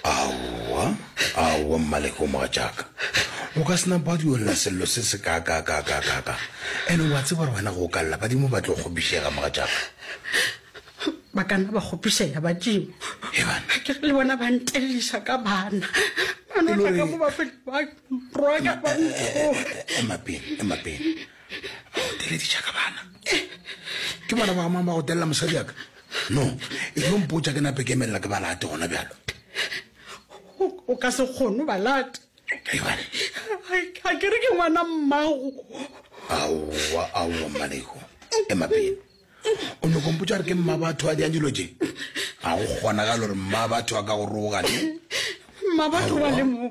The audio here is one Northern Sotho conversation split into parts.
aowa aowa mmaleke o mogatšaka o ka sena ba duelela sello se se kakakakakaka ene wa tseba gore wena go ka lla badimo ba tlo kgopišega mogatšaka ba ka nna ba kgopišega badimo ke le bona ba nteleliša ka bana banaka go ba feta ba roaka ba ntho emapele emapele ba go dirediša ka bana eh, ke bona ba amang ba go telela mosadi yaka no e tlo mpotša ke nape ke emelela ke ba late gona bjalo o ka se kgono ba late a ke re ke ngwana mmago aowa aowa mmaleko e mapele o nyoko mpotša re ke mma batho a diang dilo je ga go kgonagalo gore mma batho a ka go rogane mma batho ba le mo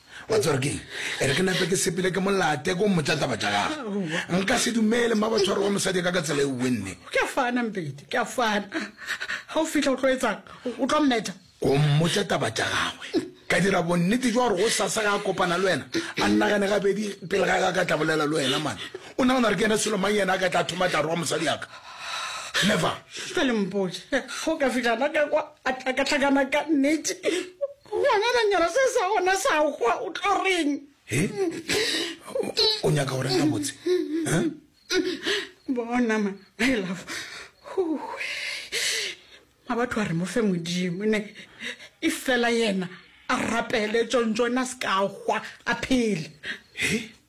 wa tseba gore keng e re ke nape ke sepele ke molate ko mmotsa taba tša gage nka se dumele mma ba tshwaro wa mosadi ka ka tsela e uwe nne ke a fana mpete ke a fana ga o fitlha o tlo etsang o tlo mmetha ko mmotsa taba tša gagwe ka dira bonnete jwa gore go sasa ga a kopana le wena a nnagane gabedi pele ga ka ka tla bolela le wena mane o nagana gore ke ena selo mang yena a ka tla thoma tla roa mosadi yaka never jale mpotse ga o ka fitlha na ka kwa a ka tlhakana ka nnete Ngwanelanyana se sa gona sa hwa o tlo reng? He? O nyaka go reng ka botse? Bona ma, my love. Huwe. Ma batho a re mo fe modimo ne. E fela yena a rapele tšontšo na se ka hwa a phele. He?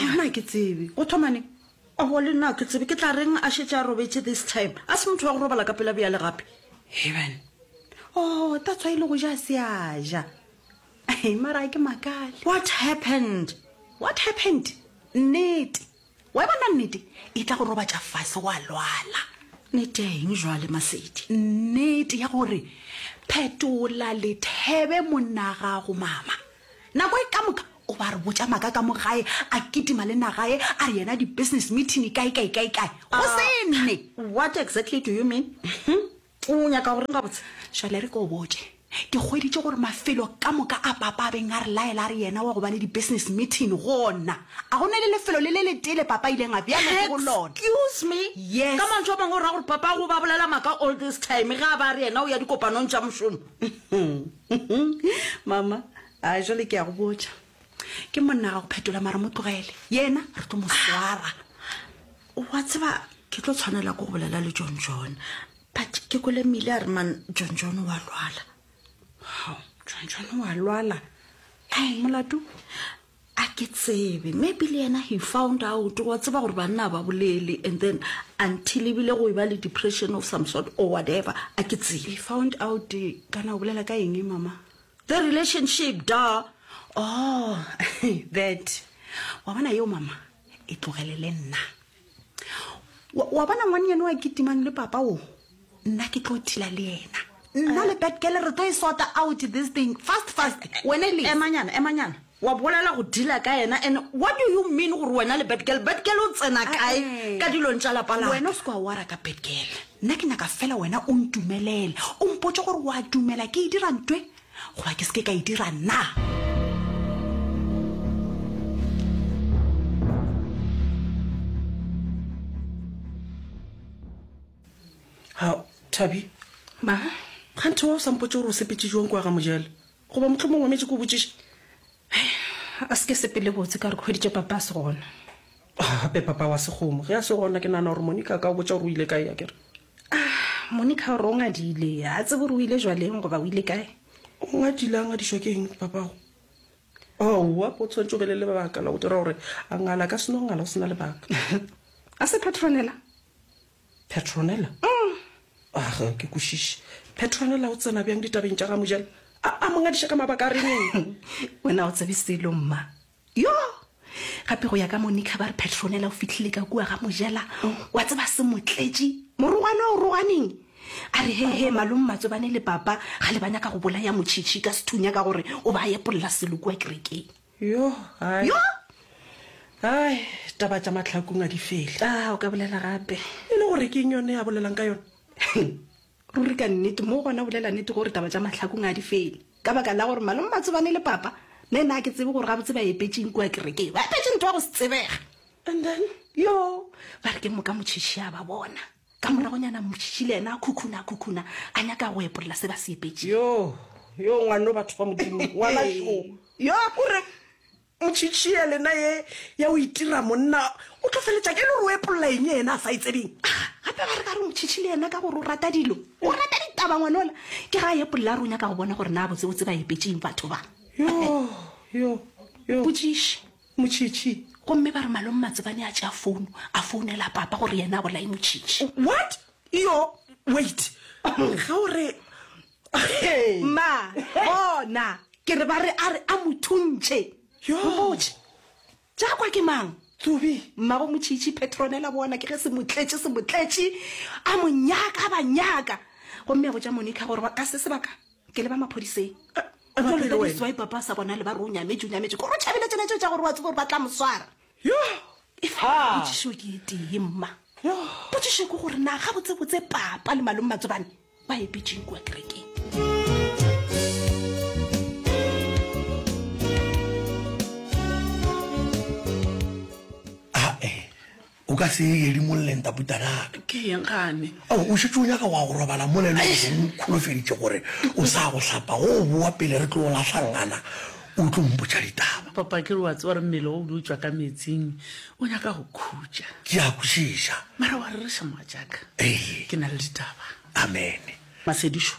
Nna ke tsebe. Go thoma neng? Aowa, le nna ga ke tsebe. Ke tla reng a šetše a robetše this time? A se motho wa go robala ka pela bjale gape. Heaven. Oh, that's why e le go ja a se a ja. He, mara ga ke makale. What happened? What happened? Nnete. Wa e bona nnete? E tla go robatša fase wa lwala. Nnete ya eng bjale, Masedi? Nnete ya gore phetola lethebe monnagago, mama. Nako e ka moka O ba re botša maka ka mo gae, a kitima le nagae, a re yena di business meeting kae kae kae kae. Go se nne. What exactly do you mean? O nyaka go reng gabotse? Šale re ke o botše. Ke hweditše gore mafelo ka moka a papa a beng a re laela a re yena wa go ba le di business meeting gona. A go ne le lefelo le le letee le papa a ileng a bjalo ke go lona. Excuse me? Yes. Ka mantšu a mangwe o ra gore papa go ba bolela maka all this time ge a ba a re yena o ya dikopanong tša mošomo? Mama, A jwale ke ya go botša. Ke monna ga go phetola mara mo tlogele. Yena re tlo mo swara. Wa tseba ke tlo tshwanela ke go bolela le John John. But ke kole mile a re man John John wa lwala. How? John John wa lwala? Ka eng molato? A ke tsebe. Maybe le yena he found out. Wa tseba gore banna ba bolele and then until ebile go e ba le depression of some sort or whatever. A ke tsebe. He found out kana o bolela ka eng mama? The relationship da oh that wa bona yeo mama e tlogele le nna wa wa bona ngwane yeno wa kitimang le papa o nna ke tlo thila le yena nna le bad girl re tlo e sota out this thing fast fast wena le emanyana emanyana Wa bolela go dealer ka yena and what do you mean gore wena le bad girl? Bad girl o tsena kae ka dilong tša lapa la? Wena o se kwa wara ka bad girl. Nna ke nyaka fela wena o ntumelele, o mpotše gore wa dumela ke e dira ntwe goba ke se ke ka e dira na? Thabi, Ma? Kganthe wa o sa mpotše gore o sepetše jwang kwa ga Mojele? Goba mohlomongwe o metše ke o botšiše. A se ke sepele botse ka re ke hweditše Papa a se gona. Gape Papa wa se kgomo. Ge a se gona, ke nagana gore Monica a ka o botša gore o ile kae, akere? Monica o re o ngadile. Ga a tsebe gore o ile jwaleng goba o ile kae. O ngadile? A ngadišwa ke eng Papago? Aowa, o tshwanetše o be le lebaka la go dira gore a ngale. A ka se no ngala go se na lebaka. A se Petronella? Petronella, Umm, ah, ga ke kwešiše. Petronella o tsena bjang ditabeng tša ga Mojela? A a mo ngadiša ka mabaka a reng? Wena o tsebe selo, mma. Yo! Gape go ya ka Monica ba re Petronella o fihlile ka kua ga Mojela. Wa tseba se mo tletše? Morongwana o roganeng? A re he he malome Matsobane le papa ga le ba nyaka go bolaya Motšhitšhi ka sethunya ka gore o ba epolola selo kua kerekeng. Yoh, hai. Yoh! Hai, taba tša mahlakung a di fele. Ah, o ka bolela gape. E le gore ke eng yone a bolelang ka yona? Ruri ka nnete, mo gona o bolela nnete gore taba tša mahlakung a di fele. Ka baka la gore Malome Matsobane le Papa, ne na ke tsebe gore gabotse ba epetše eng kua kerekeng. Ba epetše ntwa go se tsebege. And then? Yoh, ba re ke moka motšhitšhi a ba bona. Ka moragonyana Moshishi le yena a khukhuna, a khukhuna, a nyaka go epolela se ba se epetšego. Yoo, yoo, ngwano, batho ba Modimo, ngwana šo. Yo a kore, Moshishi ya lena ye ya go itira monna, o tlo feletša ka e le gore o epolela eng ye yena a sa e tsebeng? A gape ba re ka re Moshishi le yena ka gore o rata dilo, o rata ditaba ngwanola, ke ge a epolela a re o nyaka go bona gore naa botsebotse ba epetšeng batho ba. Yoo, yoo, yoo. Potšiši. Motšhitšhi. Gomme ba re Malome Matsebane a tšea founo, a founela Papa gore yena a bolaye Motšhitšhi. What? Iyo, wait. Ge o re. Mma, bona, ke re ba re a re a mo thuntše. Yoo. Mmotše, Tša kwa ke mang? Tsubi. Mmabo Motšhitšhi, Petronella, bona, ke ge se mo tletše, se mo tletše, a mo nyaka, a ba nyaka. Gomme a botša Monica gore ba ka se sebaka. Ke le ba maphodiseng. Ba tlo lwela wena. Why papa sa bona le ba runya me junya me ko ro chabile tsena tsa gore wa tsebo ba tla moswara. Yo. If ha. Botšišo ke tee mma. Yo. Botšišo ke gore na ga botse botse papa le malong matsobane ba e pitšeng kwa kerekeng. O ka se ye edimolleng taputanaka. Ke yeng gane? Ao, o šetše o nyaka wa go robala mola e le gore o nkholofeditše gore o sa go hlapa go o boa pele re tlo o lahlangana o tlo mpotša ditaba. Papa, ke re wa tseba gore mmele wa o be o tšwa ka meetsing, o nyaka go khutša. Ke a kwešiša. Mara wa rereša mogatšaka. Ee. Ke na le ditaba. Amene. Masedišo,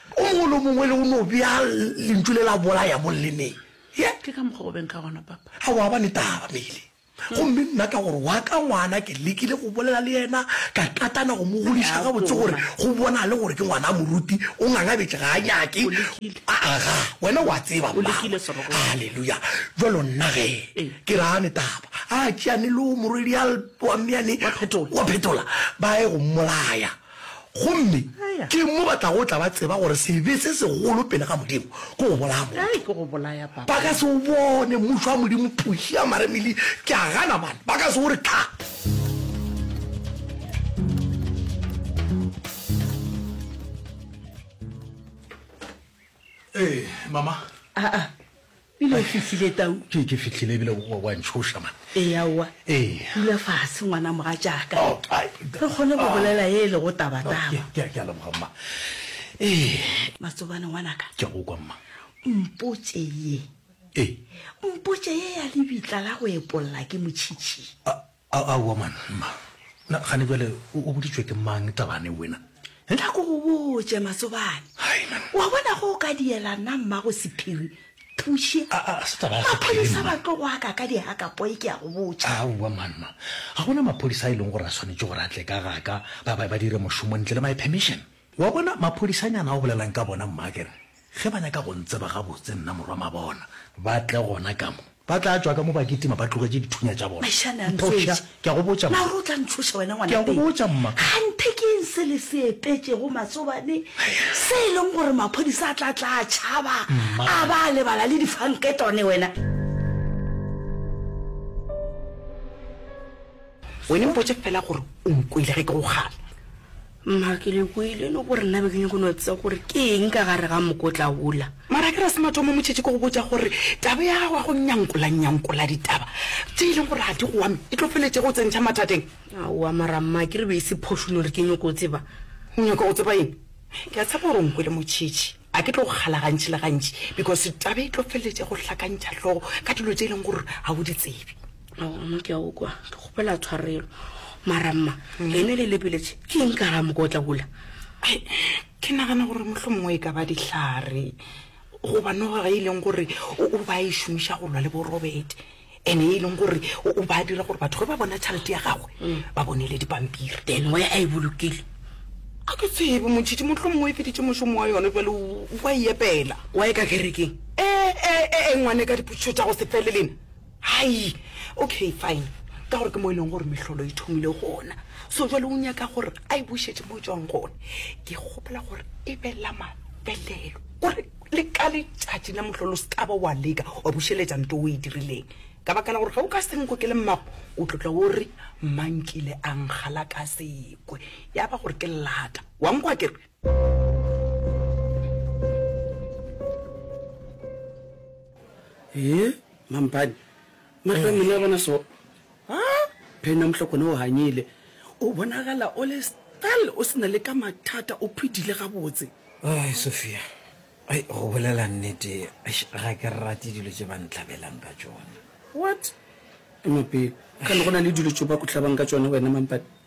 O mongwe le o mongwe le o no bea lentšu le la bolaya mo llemeng. Ye. Ke ka mokgwa o beng ka gona, Papa. A wa ba ne taba, Meile. Gomme nna ka gore wa ka ngwana ke lekile go bolela le yena, ka katana go mo godiša gabotse gore go bonale gore ke ngwana a moruti, o ngangabetše, ga a nyake. A, a, ga. Wena o a tseba, mmagwe. Haleluya! Bjalo nna ge ke re, A ne taba. A tšeane le wo morwedi a lp, wa mmeane, wa phetola, ba ye go mmolaya. Gomme ke mo ba tlago tla ba tseba gore sebe se segolo pele ga Modimo ke go bolaya motho. Ba ka se o bone Mmušo wa Modimo, phuši ya maremili. Ke a gana, bana. Ba ka se o re tlhape. Ee, Mama. Pele o fihlile Tau. Ke, ke fihlile ebile wa, wa ntšhoša man. Ee, aowa. Ee. Dula fase, ngwana mogatšaka. Oh, ai. Re kgone go bolela ye e lego taba, taba. Ke, ke, ke a leboga mma. Ee. Matsobane ngwanaka. Ke a go kwa mma. Mpotše ye. Ee. Mpotše ye ya lebitla la go epolla ke motšhitšhi. Ah. Aowa man, mma. Na, gane bjale o boditšwe ke mang tabane wena? He? Tla ko go botše, Matsobane. Hai, man. Wa bona ge o ka diela nna mmago sephiri, Thuše. A, a, se taba ya sephiri, mma. Maphodisa ba tlo go aka ka dihakapoi, ke a go botša. Aowa man, mma. Ga go na maphodisa a e leng gore a swanetše gore a tle ka ga ka, ba, ba, ba dire mošomo ntle le my permission. Wa bona, maphodisanyana o bolelang ka bona, mma, ke re, ge ba nyaka go ntseba gabotse, nna morwa mabona, ba tle gona ka mo. Ba tla tšwa ka mo ba kitima ba tlogetše dithunya tša bona. Maishane a ntšoša. Ke a go botša, mma. Na o re o tla ntšhoša wena, ngwana? Ke a go botša, mma. Kganthe ke eng se le se epetšego masobane, se e leng gore maphodisa a tla tla a tšhaba, a ba a lebala le difanketone, wena? Wena mpotše feela gore o nkwele ge ke go kgala. Mma, ke le kwele no gore nna be ke nyako no tsea gore ke eng ka gare ga mokotla wola. Mara ke re se mathomo mo tšhetše ko go botša gore taba ya gago ya go nyankola nyankola ditaba tše e leng gore ga di go ame e tlo feletše go tsentšha mathateng. Aowa mara mma ke re be e se phošo no re ke nyoko tseba. O nyako go tseba eng? Ke a tshepa gore o nkwele mo tšhetše. A ke tlo go kgala gantši le gantši because taba e tlo feleletša go hlakantšha hlogo ka dilo tše e leng gore ga o di tsebe. Aomo ke a o kwa ke kgopela tshwarelo mara mma ene le lebeletše ke eng ka ga mokotla ola Ai, ke nagana gore mohlho mongwe e ka ba dihlare goba noga ge e leng gore o, o ba e šomiša go lwa le borobete ene e leng gore o o ba dira gore batho ge ba bona tšhalete ya gagwe ba bonele dipampiri then wa a e bolokile a ke tsebe motšhitši motlho mongwe e feditše mošomo wa yone bjale o o a e epela wa e ka kerekeng ee ee ee ngwane ka dipotšišo tša go se fele lena hai okay fine ka gore ke mo e leng gore mehlolo e thomile gona so jale o nyaka gore a e bušetše mo e tšwang gone ke kgopela gore e be la mafelelo o re Le ka letšatši la mohlolo o se ka ba wa leka wa bušeletša nto o e dirileng, ka baka la gore ge o ka se nkgokele mmago, o tlo tla o re, Mma nkile a nkgala ka sekwe, ya ba gore ke lata. Wa nkwa ke re? Hee, mampane! Mahlo a mmele a bona so. Ha? Phena mohlokone o hanyile. O bonagala o le stal o sena le ka mathata o phidile gabotse. Ai Sophia. Ai go bolela nnete eish ga ke rate dilo tše ba nhlabelang ka tšona. What? Ema pele. Ga ne go na le dilo tše ba ku hlabang ka tšona wena Mampane?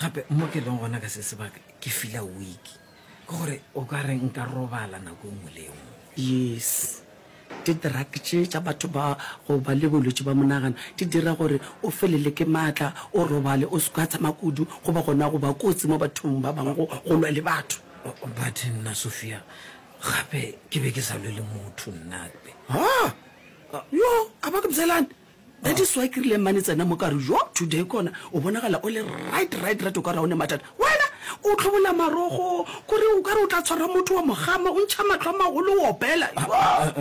gape mo ke leng gona ka se sebaka ke fila week ke gore o ka re nka robala nako e nngwe le e nngwe yes di-drug tše tša batho ba go ba le bolwetse ba monagano di dira gore o felele ke maatla o robale o se ka tshama kudu go ba gona go ba kotsi mo bathong ba bangwe go lwa le batho but nna sophia gape ke be ke sa lwe le motho nna yo a ba ke bzelane Ge di swa ke rile mane tsena mo ka re jo today kona o bonagala o le right right right o ka re one mathata wena o tlhobola marogo kore o ka re o tla tshwara motho wa mogama o ntšha matlho a magolo o opela ah, ah,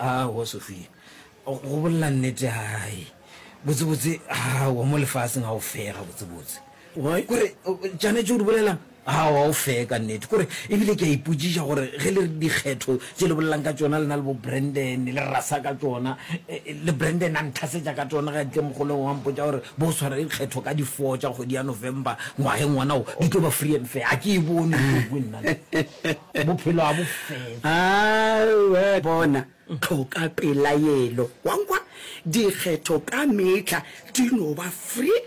ah, a wo Sophia go bolela nnete hai botsebotse a wo mo lefaseng ga o fega botsebotse Why? Kore, Janetše o di bolelang? Aowa, o fair ka nnete. Kore, ebile ke a ipotšiša gore ge le re dikgetho tše le bolelang ka tšona lena le bo Brandon, le rasa ka tšona, eh, le Brandon a nthasetša ka tšona ge a tle mogolong wa mpotša gore bo swara dikgetho ka di four tša kgwedi ya November ngwageng wona wo, di tlo ba free and fair. A ke e bone ntho e nna le. Bophelo a bo fair. Aowa, bona, tlhoka pelaelo. Wa nkwa? Dikgetho ka mehla di no ba free